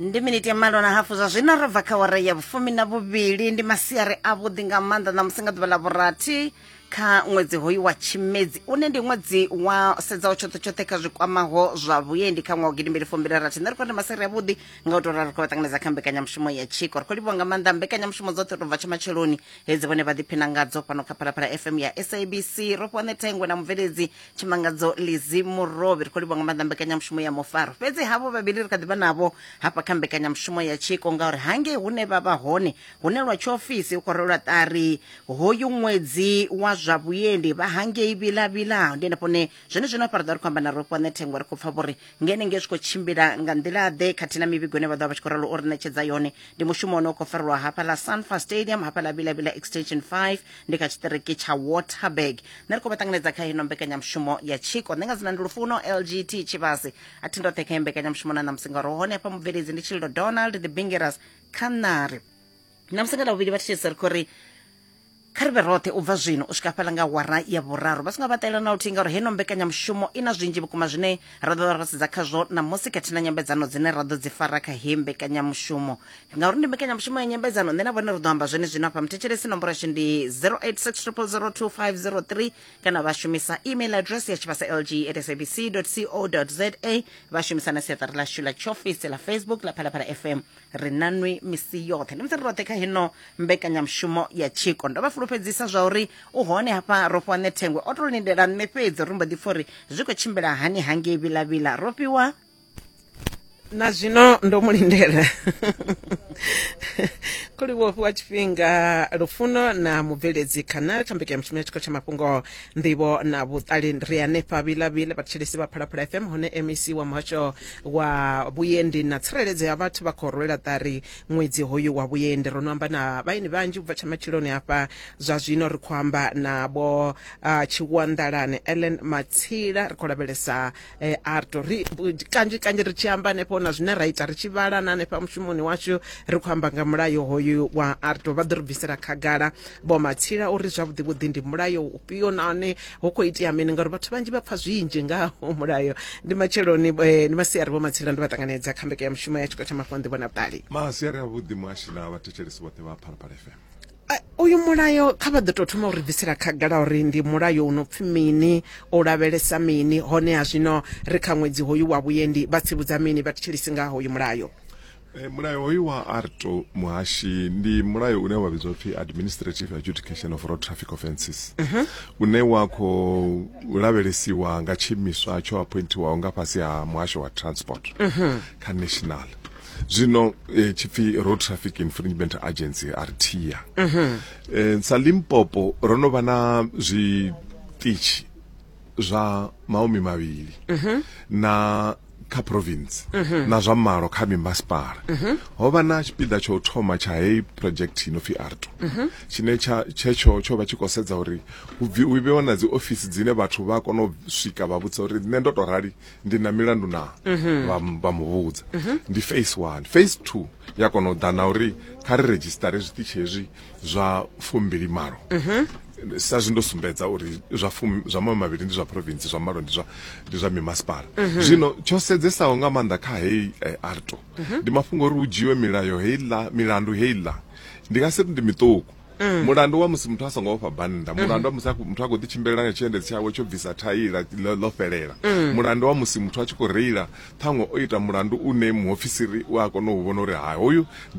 ndi miniti ya malo na hafu zwa zwino ro bva kha wara ya vhufumi na vhuvhili ndi masiari avhuḓi nga maanḓa ṋamusi nga ḓuvha ḽa vhurathi kha ṅwedzi hoyu wa tshimedzi une ndi ṅwedzi wa sedzaho tshoṱhe tshoṱhe kha zwi kwamaho zwa vhuendi kha ṅwaha gidimbili fumbili rathi nṋe ri khou ndi maseri avhuḓi nga u tou rali khou vha ṱanganedza kha mbekanyamushumo ya tshiko ri khou livhiwa nga maanḓa mbekanyamushumo dzoṱhe tou bva tsha matsheloni hedzi vhone vha ḓiphina ngadzo fhano kha phalaphala fm ya sabc ro fhiwa ṋe thengwe na mubveledzi tshimangadzo lizi murovhi ri khou livha nga maanḓa mbekanyamushumo ya mufaro fhedzi havho vhavhili ri kha ḓivha navho hafha kha mbekanyamushumo ya tshiko ngauri hangei hune vha vha hone hune lwa tshiofisi u khou rwelwa ṱari hoyu ṅwedzi wa zwa vhuendi vha hangei vhilavhila ndi henefho ne zwone zwino afha ri ḓo ri khou amba na rofho nṋe thengwa ri khou pfa vhori ngene nge zwi khou tshimbila nga nḓila-ḓe khathihi na mivhigo ine vha ḓo vha vha tshi khou ralo o ri ṋetshedza yone ndi mushumo une u khou farelwa hafha ḽa sanfa stadium hafha ḽa vilavila extension 5 ndi kha tshiṱiriki tsha waterberg nṋe ri khou vha ṱanganedza kha hino mbekanyamushumo ya tshiko nṋe nga dzina ndi lufuno lgt tshivhasi a thi ndoṱhe kha mbekanyamushumo na ṋamusi ngauri hone hafha mubveledzi ndi tshililo donald the bingeras kha ṋari ṋamusi nga ḽa vhuvhili vha thitshese ri khou ri kha ri vhe roṱhe u bva zwino u swika fhala nga wara ya vhuraru vha songo vhaṱela na luthihi ngauri heno mbekanyamushumo i na zwinzhi vhukuma zwine ra ḓo ra sedza khazwo ṋamusi khathihi na nyambedzano dzine ra ḓo dzi fara kha heyi mbekanyamushumo ngauri ndi mbekanyamushumo ya nyambedzano nṋe na vhone ri ḓo amba zwene zwino afha muthetshelesi nomboro yashu ndi 0860002503 kana vha shumisa email address ya tshivhasa lg at sabc co za vha shumisa na siaṱari ḽashu ḽa tshiofisi ḽa facebook ḽa phalaphala fm ri na nwi misi yoṱhe ndi musi ri roṱhe kha hino mbekanyamushumo ya tshiko ndo vha fulufhedzisa zwa uri u hone hafha ro fhiwa nethengwe o to lindela nṋe fhedzi ri mbo ḓi pfa uri zwi khou tshimbila hani hangei vhilavhila ro fhiwa na zwino ndo mu lindela khuli wo fhiwa tshifhinga lufuno na mubveledzi khanali kha mbekanyamushumo ya tshiko tsha mafhungo nḓivho na vhuṱali ri hanefha vhilavhila vhatshilisi vha phalaphala fm hune mec wa muhasho wa vhuendi na tsireledzo ya vhathu vha khou rwela ṱari ṅwedzi hoyu wa vhuendi ro no amba na vhaeni vhanzhi ubva tsha matshiloni hafha zwa zwino ri khou amba na vho uh, tshiwanḓalane ellen matsila ri khou lavhelesa eh, arto ri kanzhi kanzhi ri tshi amba hanefho na zwine ra ita ri tshi vhala na hanefha mushumoni washu ri khou amba nga mulayo hoyu wa arto vha ḓo ri bvisela khagala vho matsila uri zwavhuḓi vhuḓi ndi mulayo ufhio nahone hu khou itea mini ngauri vhathu vhanzhi vha pfa zwinzhi nga mulayo ndi matsheloni eh, ndi masiari vho matsila ndi vha ṱanganedza kha mbekanyamushumo ya tshiko tsha mafhungo nḓivho na vhuṱali masiari a vhuḓi muhashi na vhathetshelesi vhoṱhe vha phalaphala fm Eh, uyu mulayo kha vha ḓo tou thoma u ri bvisela khagala uri ndi mulayo u no pfi mini u lavhelesa mini honeha zwino ri kha ṅwedzi hoyu wa vhuendi vha tsivhudza mini vha thetshelesi nga hoyu mulayo Eh, mulayo hoyu wa arto muhashi ndi mulayo une wa vhidzwa pfi administrative adjudication of road traffic offences uh -huh. une wa khou lavhelesiwa nga tshiimiswa tsho appointiwaho nga fhasi ha muhasho wa transport uh -huh. kha national zwino eh, tshipfi road traffic infringement agency rta uh -huh. eh, sa limpopo ro no vha na zwiṱitshi zwa mahumi mavhili mhm. na kha province mhm. na zwa malo kha mimasipala mhm. ho vha na tshipiḓa tsho thoma tsha heyi project ino pfi arto tshine tshetsho tsho vha tshi khou sedza uri hu vhewa na dzi ofisi dzine vhathu vha kona u swika vha vhudza uri nṋe ndo to rali ndi na milandu na vha muvhudza ndi face one face two ya kona u ḓa na uri kha ri redzhisitare zwiṱitshi hezwi zwa fumbili malo mhm. sa zwi ndo sumbedza uri zwa fumi zwa maṅwe mavhili ndi zwa province zwa malo ndi zwa ndi zwa mimasipala mhm. zwino tsho sedzesaho nga maanḓa kha heyi eh, arto mhm. ndi mafhungo uri hu dzhiwe milayo heiḽa milandu heiḽa ndi nga si ri ndi miṱuku Mm. mulandu wa musi muthu a songo ofha bannda mm. mulandu wa musi muthu a khou ḓi tshimbilela nga tshiendedzi tshawe tsho bvisa thaila ḽo fhelela mm. mulandu wa musi muthu a tshi khou reila ṱhaṅwe o ita mulandu une muofisiri u a kona u vhona uri ha hoyu ndi